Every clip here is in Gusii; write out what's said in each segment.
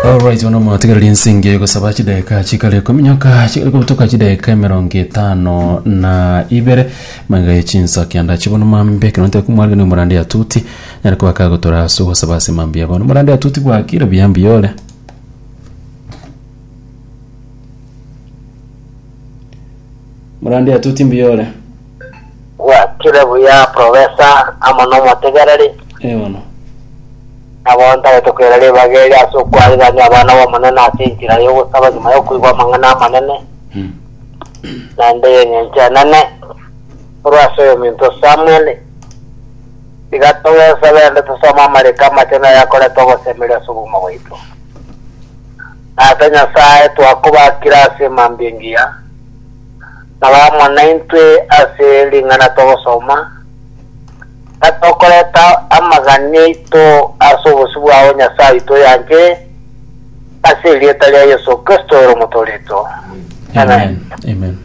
Alright, bono mwatigereri ense engiya egosaba chidakika chikare ekominyoka chikare kobutoka chidakika emerongo etano na ibere magega ya chinsa kianda chibono mambe ekero ntari komwarire na omorande ya tuti nere koba kagotora ase ogosaba ase mambuya bono omorande ya tuti bwakire buya mbuya ore omorande ya tuti mbuya ore Gwakire buya profesa amo nomotegereri. Ee bono. Nabo ntagete koira ribaga eri ase okwarigania abana b'Omonene ase enchera y'ogosaba nyuma y'okoigwa amang'ana amanene, Mm. naende y'engencho enene, korwa ase oyominto Samueli. Tiga togesabe naende tosome amariko amachenu ayakorete ogosemeria ase obogima bwaito. Tata Nyasae, twakobakire ase mambia engiya. Nabo amo naintwe ase ring'ana togosoma, na tokoreta amagani aito ase obosio bwao Nyasae oito oyanchire, ase erieta ria Yeso Kristo ere omotoorito. Amen. Amen.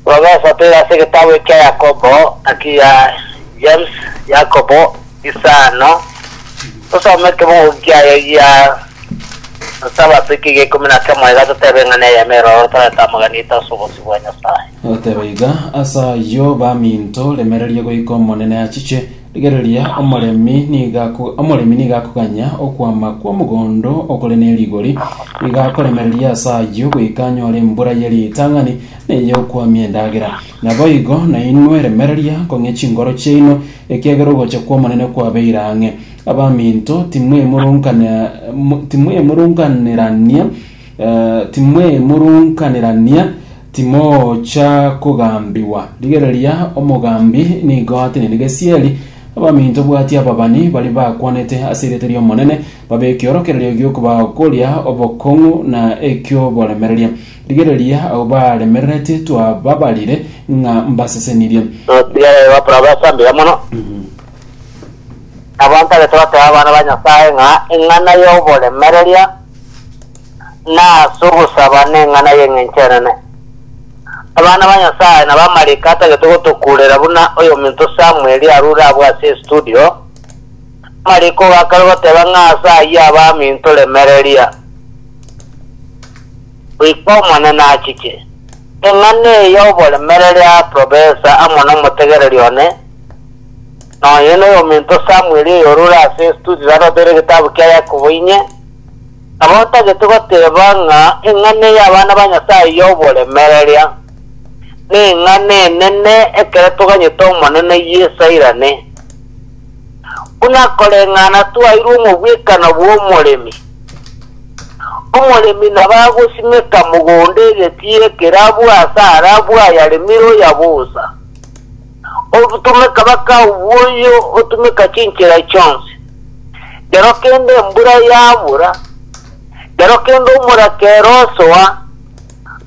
Robeso toira ase egetabu ekia Yakobo, naki ya James, Yakobo, Isano, tosome ekemogoki kiaye gia Sabato ekiga ikomi na kemo iga totebe ng'a neyemo eroro torete amagena aito ase obosio bwa Nyasae. Agoteba iga, Ase ayio, baminto, remereria goika Omonene achiche. Rigereria, omoremi niga ako- omoremi niga akoganya okwama kw'omogondo okore ne rigori, niga akoremereria ase ayio goika anyore embura ye ritang'ani na ey'okwamia endagera. Naboigo nainwe remereria kong'e chingoro chiaino, Ekiagera ogocha kw'Omonene kwabeire ang'e. Abaminto, timwemurunkanerania, timwemurunkanerania, timocha kogambigwa. Rigereria, omogambi nigo atenene gesieri. Abaminto, bwatia ababani baria bakwanete ase erieta ri'Omonene, babe ekiorokererio gi'okobaa koria obokong'u na eki'oboremereria. Rigereria abwo baremererete twababarire ng'a mbasesenirie. Notigere gokora obesa mbuya mono. Nabo ntagete goteba abana ba Nyasae ng'a eng'ana y'oboremereria na ase ogosaba neng'ana y'engencho enene. Abana ba Nyasae na bamalaika atagete gotokurera buna oyominto Samueli arure abwo ase estudio, omalaika ogakare goteba ng'a ase ayio abaminto remereria. Goika Omonene achiche. Eng'ana eye y'oboremereri ya Professor amo nomotegereri one, nonya noyominto Samuel oyorure ase estudio raroteire egetabu kia Yakobo inye, nabo otagete goteba ng'a eng'ana eye y'abana ba Nyasaye y'oboremereria neng'ana enene ekero toganyete Omonene Yeso airane. Buna koreng'ana twairwe omobwekano bw'omoremi. Omoremi nabagosimeka mogondo egetii ekero abwo ase arabwo ayaremire oya bosa. Obutumeka bakao bw'oyio otumeka chinchera chionsi. Rero kende embura yabura, rero kende omorakera osoa,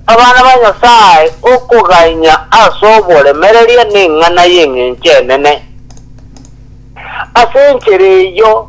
abana ba Nyasae okogainya ase oboremereria neng'ana y'engencho enene. Ase enchera eyio,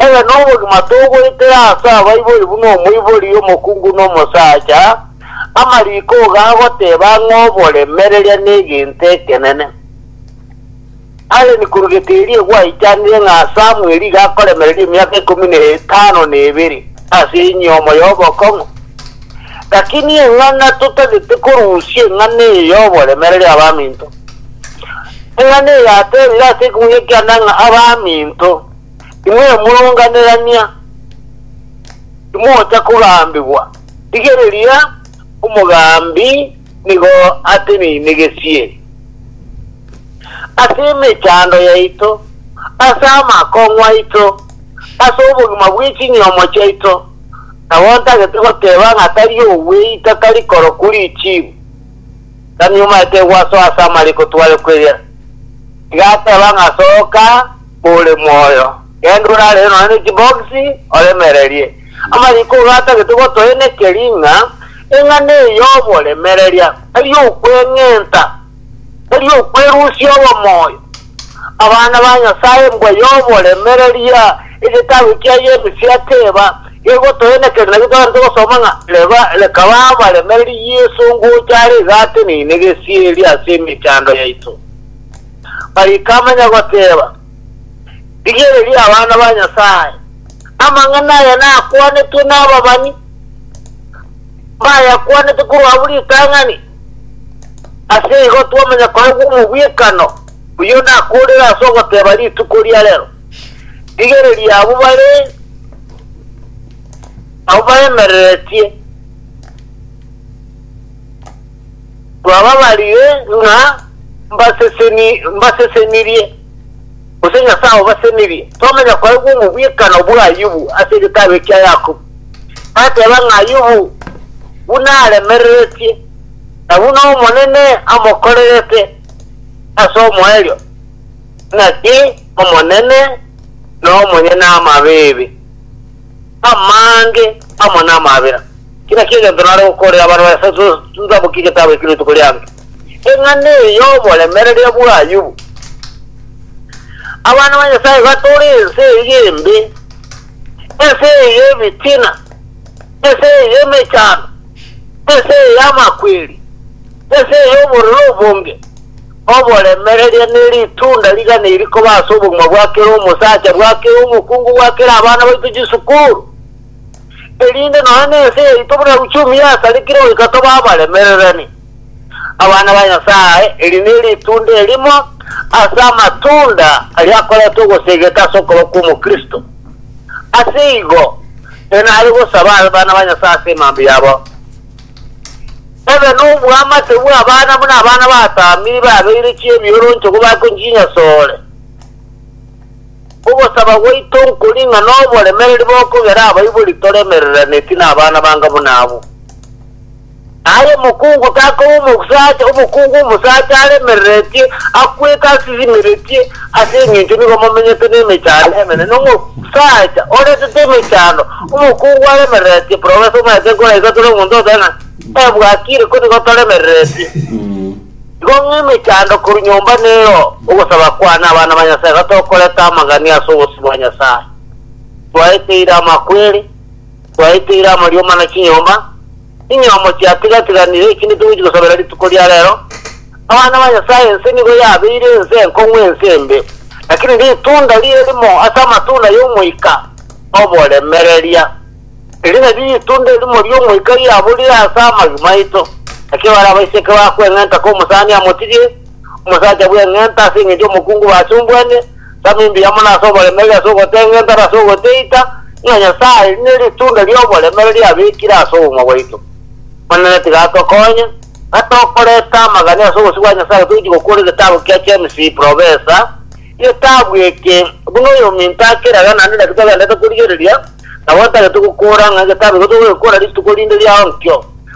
Ere nobogima togoetera ase abaibori buna omoibori omokungu na omosacha, amariko ogo agoteba ng'a oboremereria negento ekenene. Allen korugete erie gwaichanire ng'a Samuel iga akoremereria emiaka ikomi na etano na ebere ase enyomo y'obokong'u. Lakini eng'ana totagete korusia eng'ana eye y'oboremereria abaminto. Eng'ana eye yateebire ase ekegunia kiane ng'a abaminto, inwe moronganerania, timocha kogambigwa, rigereria omogambi nigo atenenegesie ase emechando yaito, ase amakong'u aito, ase obogima bwe chinyomo chiaito, nabo ntagete goteeba ng'a tari ogweita tari korokwa richiibu. Tami omaete gwasoa ase amariko tware kweria. Iga ateba ng'a soka ore moyo, genda orarere nonya ne chibogisi oremererie. Amariko iga atagete gotoenekeria ng'a eng'ana eye y'oboremereria tari okweng'enta, tari okwerusia obomoyo. Abana ba Nyasae, mbwaye oboremereria egetabu kiaye Emisia Teba, gegotoenekeri naki togachete gosoma ng'a reba rekaba abaremereri Yeso ngocha are iga ateneine gesieri ase emechando yaito. Mariko amanya goteba, Rigereria abana ba Nyasae, amang'ana aya nakwanetwe nababani. Mbayakwanete korwa abwo ritang'ani, ase igo twamanya koba gw'omogwekano oyio nakoorere ase ogoteba rituko ria rero. Rigereria abwo bare abwo baemereretie, twababarire ng'a mbaseseni mbasesenirie, gose Nyasae obasenirie. Twamanya koba gw'omogwekano bwa Ayubu ase egetabu ekia Yakobo. bateba ng'a Ayubu buna aremereretie, na buna Omonene amokorerete ase omoerio, naki Omonene nomonyene amabibi, amange amo namabera. Kera ki egento nare gokoorera abarwani ase chitabu ki getabu eki rituko riange. Eng'ana eye y'oboremereria bwa Ayubu. Abana ba Nyasae iga tore ense eye embe. ense eye y'ebitina, ense eye y'emechando, ense eye y'amakweri, ense eye y'obororo obonge, oboremereria ne ritunda rigana iri koba ase obogima bwa kera omosacha, bwa kera omokungu, bwa kera abana baito chisukuru, erinde nonya nense yaito buna uchumi yasarikire goika tobe abaremererani. Abana ba Nyasae, eri neritunda erimo ase amatunda aria akoreta ogosegeka ase okobaa kw'Omokristo. Ase igo, enare gosaba abana ba Nyasae ase emambe yabo. Ebe noboamate bw'abana buna abana batamiri babeire chi'ebioroncho kobakwe chinyasore. Ogosaba gwaito nkori ng'a noboremereri bokogera abaibori toremereraneti nabana banga buna abwo. Aye omokungu takoba omosacha, omokungu omosacha aremereretie, akwete asisimeretie, ase engencho nigo momenyete nemechando emene. Na omosacha oretete emechando, omokungu aremereretie, profesa omanyete nkoraisatore omonto onde ng'a, Eh, bwakire, ko nigo toremereretie. Igo ng'a emechando korwa nyomba nero ogosaba kwane abana ba Nyasae iga tokoreta amang'ani ase obosio bwa Nyasae, twaeteire amakweri, Twaeteire amarioma na chinyomba, chinyomo chiatiga-tiganire, eki nitogochi gosabera rituko ria rero. Abana ba Nyasae ense nigo yabeire ense enkong'u ense embe, lakini ritunda rie rimo ase amatunda y'Omoika oboremereria. Eri nario ritunda erimo ri'Omoika riaburire ase amagi maito, naki bare abaiseke bakweng'enta komosani amotirie, omosacha bw'eng'enta, ase engencho omokungu basumbwane, tama imbuya mono ase oboremereri ase ogoteng'enta na ase ogoteita, ng'a Nyasae neritunda ri'oboremereri abekire ase obogima bwaito. Omonene tiga atokonye, ng'a tokoreta amagani ase obosio bwa Nyasae toichi gokora egetabu kia James Professor, egetabu eke buna oyominto akeraga naende naki togenderete korigereria, nabo ntagete gokora ng'a egetabu eke togogekora rituko rinde riao nkio.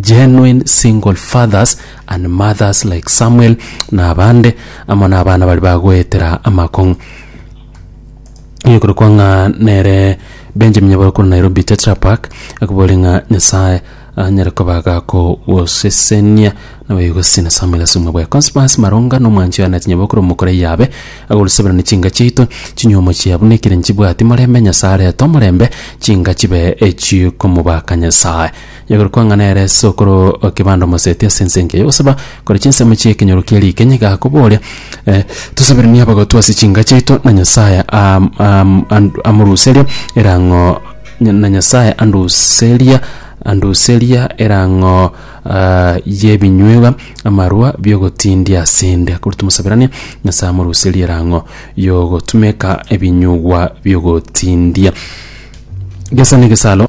Genuine single fathers and mothers like Samuel na abande amo nabana bari bagoetera amakong'u. Ekorokwa ng'a nere Benjamin Nyaboro korwa Nairobi Tetra Park akobori ng'a Nyasaye anyare koba gakogosesenia nawe igosesenia Samuel ase obogima bwaye. Conspers Maronga na omwanchi oye Annet Nyaboro korwa Omokora Iyabe agoruseberani chinka chiaito, chinyuomo chiabu na ekere nchibwati morembe, Nyasaye arete omorembe chinka chibe echikomobaka Nyasaye. Igoro kwang'ana ere sokoro o kebanda omoseti ase ense enke y'ogosaba kore chinsemo chi'ekenyoro kie riikeny, gakoboria, eh, Tosaberanie abagotu ase chinka chiaito, na Nyasae am- am- and- amoruserie erang'o na Nyasae anduseria anduseria erang'o ah, y'ebinyuegwa amarwa bi'ogotindia ase 'nde. Korwa tomosaberanie, Nyasae amoruserie erang'o y'ogotumeka ebinyugwa bi'ogotindia. Gesa negesalo.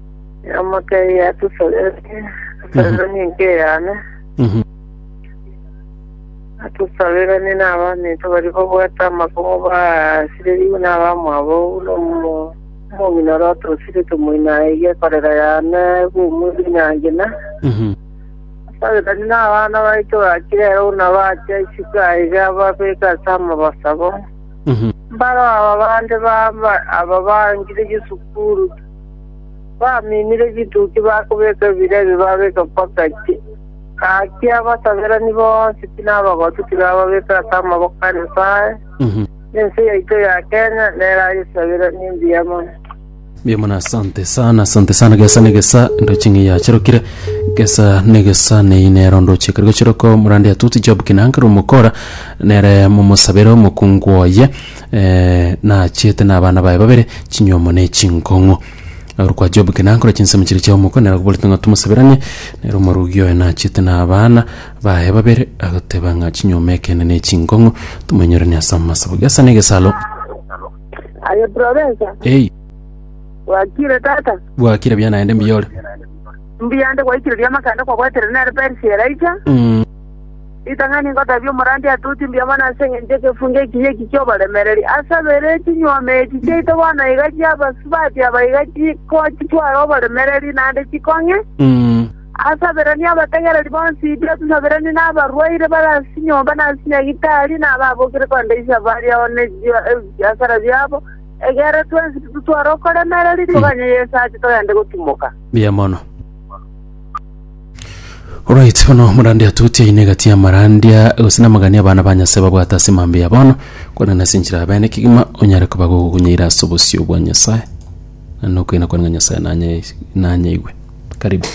Yamoteebia, Tosabererie, tosaberanie enka eyane, Mhm. na tosaberanie n'abaminto baria babwate amakubo baasirerigwe n'abamwabo, buna omo- omong'ina oria otosirete moino aye iga ekorera yane bw'omwezi nyangi na Mhm. tosaberanie n'abana baito bakire ero buna bachia isiko aiga babeke ase amabasabo. Mhm. Mbaro aba bande baba aba bangire chisukuru Bamiinire chituki bakobeka ebira ebio babeka mpaka inche. Gaki abasaberani bonsi pi na abagotu tiga ababeke ase amaboko a Nyasae, na ense yaito ya Kenya nero ayesaberanie mbuya mono. Mbuya mono asante sana asante sana gesa negesa ndoche ng'a yachirokire gesa negesa neyi nero ndoche ekero gochiroko morande atuti job kinanga rumokora nere momosabere omokungu oye naachete nabana baye babere chinywomo ne chinkong'u. Agoro kwa Job ki nankore chinsemo chiria chia omoko, nere akoboretie ng'a tomosaberanie, nere omorugi oye naachete nabana baye babere, agoteba ng'a chinywomo ekeene ne chinkong'u tomoinyoranie ase amasabo. Gesa negesalo. Aye Professor, Ei, wakire tata? bwakire bia naende mbiore. Mbuya nde gwaikire riamakaanda kwabwaterire nere Persia eraicha. Mm. Ritang'ani ngoteebie omorandia ati, Oti mbuya mono ase engencho y'egefunga ekiya eki ki'oboremereri. Ase abere chinyuoma echi chiaito bono iga chi'abasubati aba iga chikotwara oboremereri naende chikong'e. Ase abere nigo abategereri bonsi iga tosaberani na abarwaire bare ase chinyomba na ase nyagitari, na ababokire korende inse bare ao ne ebiasara biabo. Egere twensi titotware okoremereri, toganye Yeso ache togende gotimoka. Mbuya mono. Alright, bono omorandia atoti aine egati y'amarandia gose namagani abana ba Nyasae babwate ase mambia ya bono, korende nase enchera ya bene kegima onyare koba gokokunyeira ase obosio bwa Nyasae, na nokoina kwane ng'a Nyasae nanye nanyeigwe. Karibu.